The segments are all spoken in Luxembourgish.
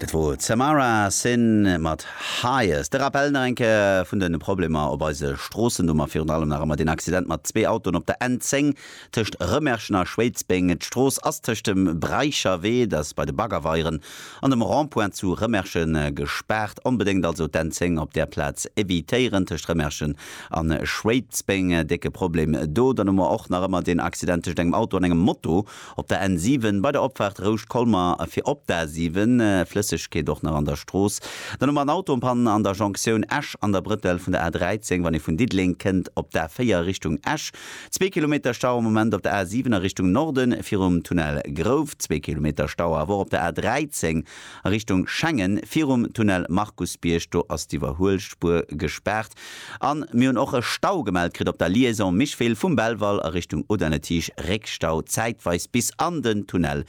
Dat wor Tamara Sinn mat Highest. De Rappel nach eng Kéier vun de Problemer op eise Stroossen. Do mer virun allem nach ëmmer deen Accident mat zwee Autoen op der N10 tëscht Rëmerschen a Schwéidsbeng. D'Strooss ass tëscht dem Breicherwee, dat ass bei de Baggerweieren, an dem Rond-point zu Rëmerschen gespaart. Onbedéngt also d'N10 op där Plaz evitéieren, tëscht Rëmerschen a Schwéidsbeng. Décke Problem do. Dann hu mer och nach ëmmer deen Accident tëscht engem Auto an engem Moto. Op der N 7 bei der Opfaart Rouscht-Colmer fir op d'A 7, Flëssegkeet och nach an der Strooss. Dann hu mer en Autopanne an der Jonktioun Esch an der Brëttel vun der A 13, wann ee vun Diddeleng kënnt op d'A 4 Richtung Esch. Zwee Kilometer Stau am Moment op der A 7 a Richtung Norden virum Tunnel Grouft. Zwee Kilometer Stau awer och op der A 13 a Richtung Schengen virum Tunnel Markusbierg. Do ass d'Iwwerhuelspuer gespaart. An mir hunn och e Stau gemellt kritt op der Liaison Micheville vum Belval a Richtung Audun-le-Tiche, Réckstau zäitweis bis an den Tunnel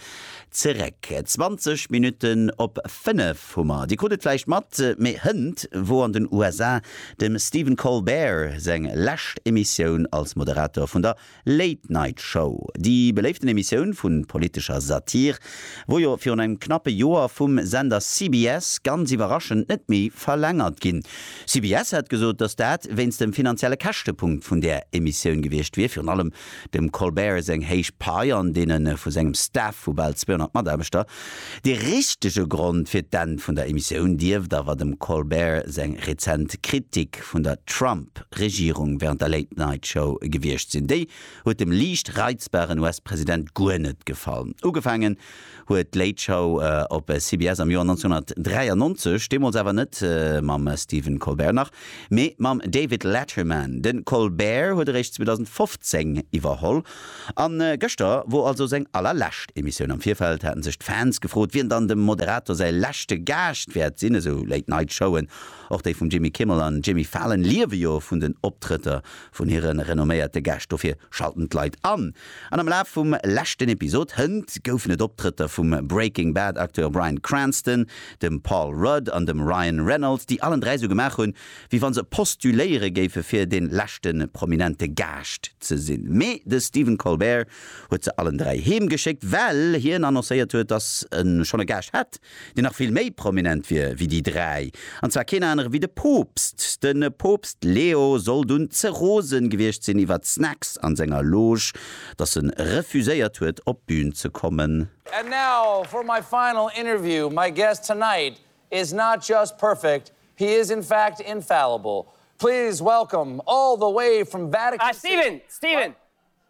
zeréck. 20 Minutten op 5 hu mer, Dir krut et vläicht mat, mee hënt wor an den USA dem Stephen Colbert seng lescht Emissioun als Moderator vun der Late Night Show, déi beléiften Emissioun vu politescher Satire, wor jo virun engem knappe Joer vum Sender CBS ganz iwwerraschend net méi verlängert ginn. CBS hat gesot, datt dat wéinst dem finanzielle Käschtepunkt vun där Emissioun gewiescht wier, virun allem dem Colbert seng héich Pai an deene vu sengem Staff vu bal 200 Mataarbechter. De richtege Grond fir d'Enn vun der Emissioun dierft awer dem Colbert seng rezent Kritik. Gäscht vun der Trump-Regierung während der Late Night Show gewiescht sinn. Déi huet dem liicht reizbaren US-President guer net gefall. Ugefaangen huet d'Late Show op CBS am Joer 1993, deemools awer net mam Stephen Colbert, nach, mee mam David Letterman. De Colbert huet eréischt 2015 iwwerholl. A gëschter wor also seng allerlescht Emissioun. Am Virfeld haten sech d'Fans gefrot, wien dann dem Moderator säi leschte Gaascht wäert sinn. Esou Late Night Showen Och déi vum Jimmy Kimmel an Jimmy Fallon liewe jo vun den Optrëtter vun hire renomméierte Gäscht, dofir schalten d'Leit an. An am Laf vum leschten Episod Hënt goufen et Optrëtter vum Breaking Bad Acteur Bryan Cranston, dem Paul Rudd an dem Ryan Reynolds, déi allen dräi sou gemaach hunn, wéi wann se postuléiere géife fir den leschte prominente Gaascht ze sinn. Mee de Stephen Colbert huet se allen dräi heem geschéckt, well hien annoncéiert huet, dass e schonn e Gaascht hätt. deen nach vill méi prominent wier wéi déi dräi, an zwar keen anere wéi de Poopst. De Poopst Leo soll dunn ze rose gewiescht sinn iwwert d'Snacks an senger Loge, datt en refuséiert huet op d'Bühn ze kommen. And now for my final interview, my guest tonight is not just perfect, he is in fact infallible. Please welcome all the way from Vatican City. Ah Steven, Steven,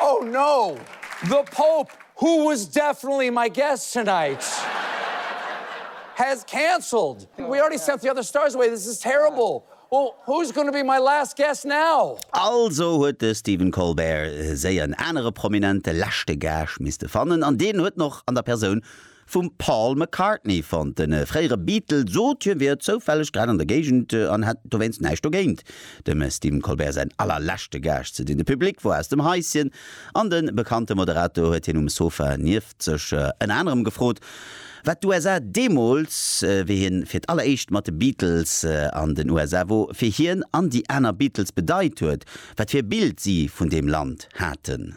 Oh no! The Pope, who was definitely my guest tonight, has cancelled! We already sent the other stars away, this is terrible! Well, who's gonna be my last guest now? Also huet de Stephen Colbert séier en anere prominente leschte Gaascht misste fannen, an deen huet en och an der Persoun Vum Paul McCartney fonnt. De fréiere Beatle sot, hie wier zoufälleg grad an der Géigend an hätt dowéinst näischt dogéint, dem Stephen Colbert säin allerleschte Gaascht ze sinn. De Public wor aus dem Haisschen an de bekannte Moderator huet hien um Sofa nieft sech ënner anerem gefrot, wat d'USA deemools, wéi hien fir d'alleréischt mat de Beatles an den USA wor, fir hien an déi aner Beatles bedeit huet, wat fir e Bild si vun deem Land haten.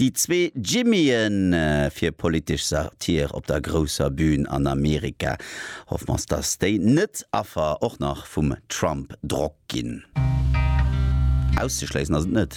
Déi zwee Jimmyen fir politesch Satire op der grousser Bühn an Amerika. Hoffe mers dass déi net Affer och nach vum Trump Drock ginn. Auszeschléissen ass et net.